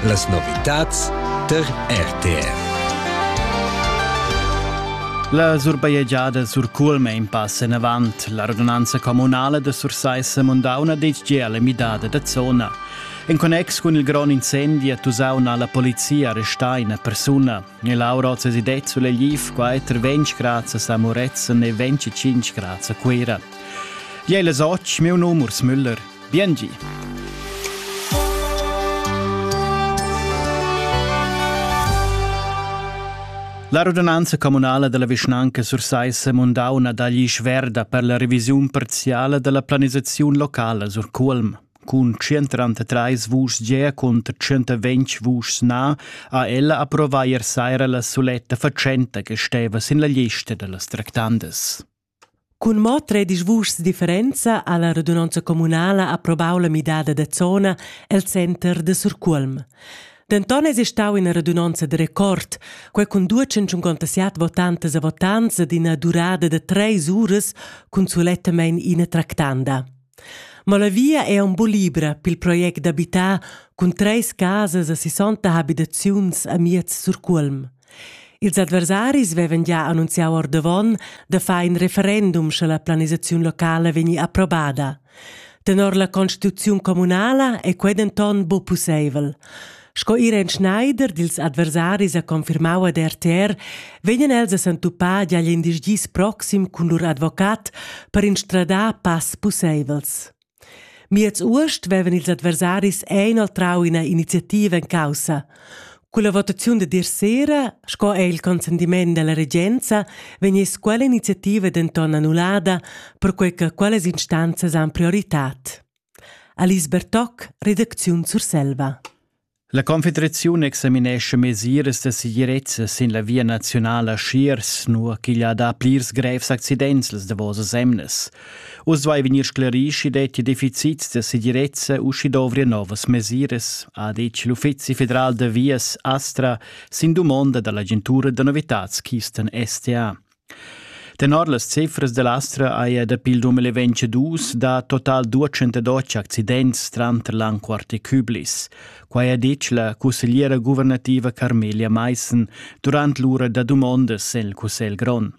Las novitads tar RTR. La surbajegiada sur Culme in pass enavant. La radunanza communala da Sursaissa Mundauna detg gia la midada da zona. En connex cun il grond incendi a Tusauna la polizia arrestà una persona. E Laura Zesidet sulle Liv qua è 20 grazie a Moretzen e 25 grazie a Cuira. Jei les och, meu numers Müller, Biengi. La radunanza communala della vischnanca Sursaissa Mondauna dagli Schwerda per la revisiun parziale della planisazione locale sur Culm. Cun 133 vuschs ge cont 120 vuschs na ha ella approvà ier saira la suletta facenta che steva sin la lista dellas tractandas. Cun mo tredisch vuschs differenza ha la radunonza communala approbau la midada da zona el center da Surcuolm. Denton esi stau ina radunonza de record, quei cun 257 votantas e votants ed ina durada da treis uras cun sulettamein ina tractanda. Ma la via è un po libra pil project d'abitar cun treis casas e 60 habitaziuns a miez Surcuolm. Ils adversaris vevan gia annunziau ordavon da far in referendum sche la planisaziun locala vegni approbada. Tenor la constituziun communala è quei denton bu pusseivel. Sco Irene Schneider dils adversaris ha confirmau ad RTR, vegnan els a s'entupar digl in dis proxim cun lur advocat per instradar pass pusseivels. Miez uost vevan ils adversaris inoltrau ina iniziativa en caussa. Con la votaziun de dir sera, sco è il consentiment della regenza, vegness quella iniziativa denton annullada, perquei che quellas instanzas han prioritad. Alice Bertoc, redacziun Surselva. La Confederaziun examinescha mesiras da segirezza sin la via naziunala Schiers, nua ch'igl ha dà plirs grevs accidents las davosas emnas. Uss duai vegnir sclarì sch'i dettia deficits da segirezza u sch'i dovria novas mesiras, ha detg l'Uffizi federal da vias Astra sin dumonda da l'agentura da novitads Keystone STA. Tenor las cifras da l'Astra haja dapi il 2022 dà total 212 accidents tranter l'Anquart e Küblis. Quai ha ditg la cussegliera guvernativa Carmelia Maissen durant l'ura da dumondas en il Cussegl grond.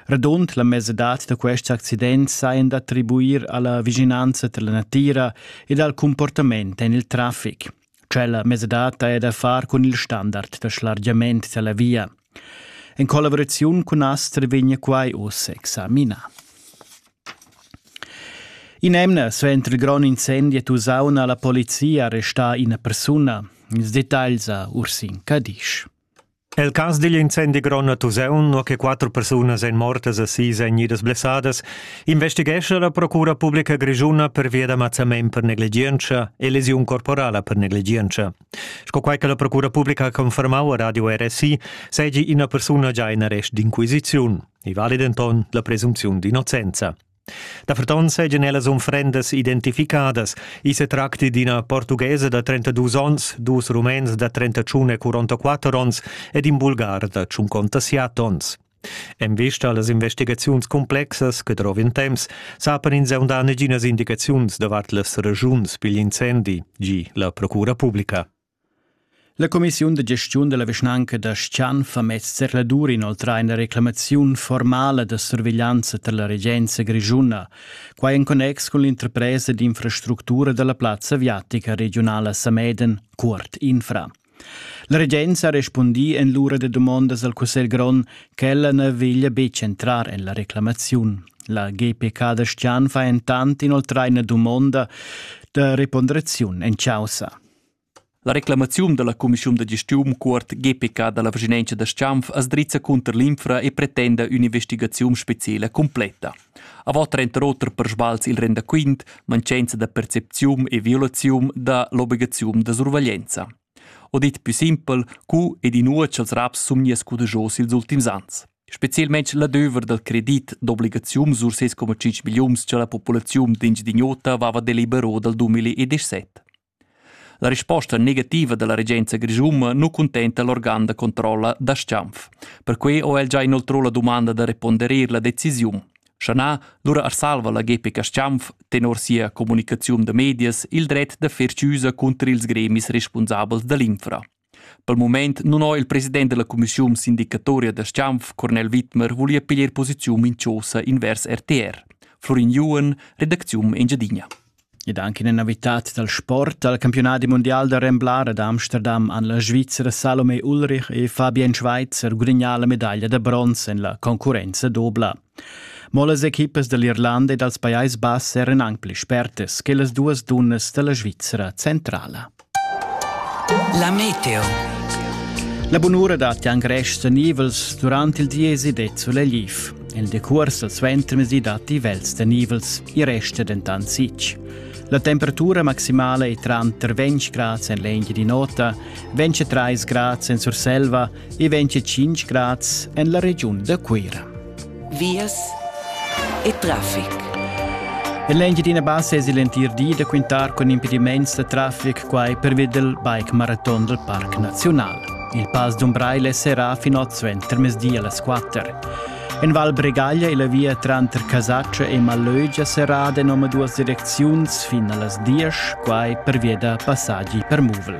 Radund la mesadad da quests accidents sajan d'attribuir a la vischinanza da la natira ed al cumportament en il traffic. Tschella mesadad ha da far cun il standard da schlargiament dalla via. En collaboraziun cun Aster vegna quai uss examinà. In emna suenter il grond incendi a Tusaun ha la polizia arrestà ina persuna. Ils dettagls a Ursin Cadisch. El cas digl incendi grond a Tusaun, nua che quatter persunas èn mortas e sis èn idas blessadas, investighescha la Procura publica grischuna pervia da mazzament per negligientscha e lesiun corporala per negligientscha. Sco quai che la Procura publica ha confermau a Radio RSI, seigi ina persuna già in arrest d'inquisiziun. I vali denton la presunziun d'innocenza. Daferton seigien ellas unfrendas identificadas. I se tracti d'ina portughesa da 32 onns, dus rumens da 31 e 44 onns ed in bulgar da 57 onns. En vista allas investigaziuns complexas che trovin temps, sapan ins aundà neginas indicaziuns davart las regiuns pigl incendi, gi la Procura publica. La cumissiun da gestiun dalla vischnanca da Schan fa mez zercladur inoltrar ina reclamaziun formala da surveglianza tar la regenza grischuna, quai en connex cun l'interpresa d'infrastructura dalla plazza aviatica regiunala Sameden, Cuort Infra. La regenza ha respundì en l'ura da dumondas al cussegl grond ch'ella na veglia betg entrar en la reclamaziun. La GPK da Stian fa entant inoltrar ina dumonda da reponderaziun en chaussa. La reclamaziun dalla cumissiun da gestiun cuort GPK dalla vischinanza da Schanf as drizza cunter l'infra e pretenda ün'investigaziun speciela completa. Avant trenta oter per sbals il rendaquint, mancanza da percepziun e violaziun da l'obligaziun da surveglianza. O dit più simpel, cu ed inua ch'els raps sumnia scudejos ils ultims ans. Spezialmente l'adöver dal credit d'obligaziun sur 6,5 millions che la populazione d'Engedignota aveva delibero dal 2017. La risposta negativa dalla regenza grischuna nu cuntenta l'organ da controlla da Schanf. Perquei ho el già inoltrò la dumanda da reponderer la decisiun. Shanà lura arsalva la GPK Schanf tenor sia comunicaziun da medias il dret da fer chiusa cunter ils gremis responsabels da l'infra. Pel mumaint nun ho il president da la cumischiun sindicatoria da Schanf, Cornel Widmer, vuglia piglier posiziun minchosa invers RTR. Florin Juhen, redacziun Engiadina. Ed anche in navitat dal sport al campionat mondial da Remblar ad Amsterdam han la Svizzera Salome Ulrich e Fabian Schweitzer gudagnà la medaglia da bronz en la concurrenza dobla. Mo las equipas dall'Irlanda e dals Pajais Bass eran aunc pli spertas che las duas dunnas dalla Svizra centrala. La meteo. La bunura dat Jan Grest nivels durant il diesi de Zulegliv. Il decurs al suentermesi dat i vels de nivels, i resta dentant sic. La temperatura maximale è tranter 20 grad en l'engi di nota, 23 grad en Surselva e 25 grads en la regiun da Cuira. Vias e traffic. En l'Engiadina Bassa es l'entir di da quintar con impediments da traffic quai per vedel bike marathon del Parc Nazional. Il pass d'Umbraile serà fin oz suenter mesdi alle 4. En Val Bregaglia e la via tranter Casaccia e Malögia serrada en omaduas direcziuns fin a las 10, quai per via da passaggi per muvel.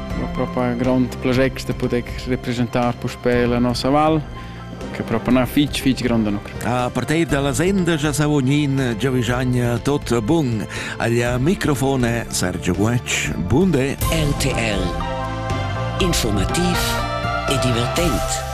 propo ein grond project da poder representar puspei la nossa val che proprio una fitch fitch grande no. A partire dalla senda già sa ognin Giavigiagna tot bun. Aglia microfone Sergio Guac. Bunde. RTL. Informativ e divertent.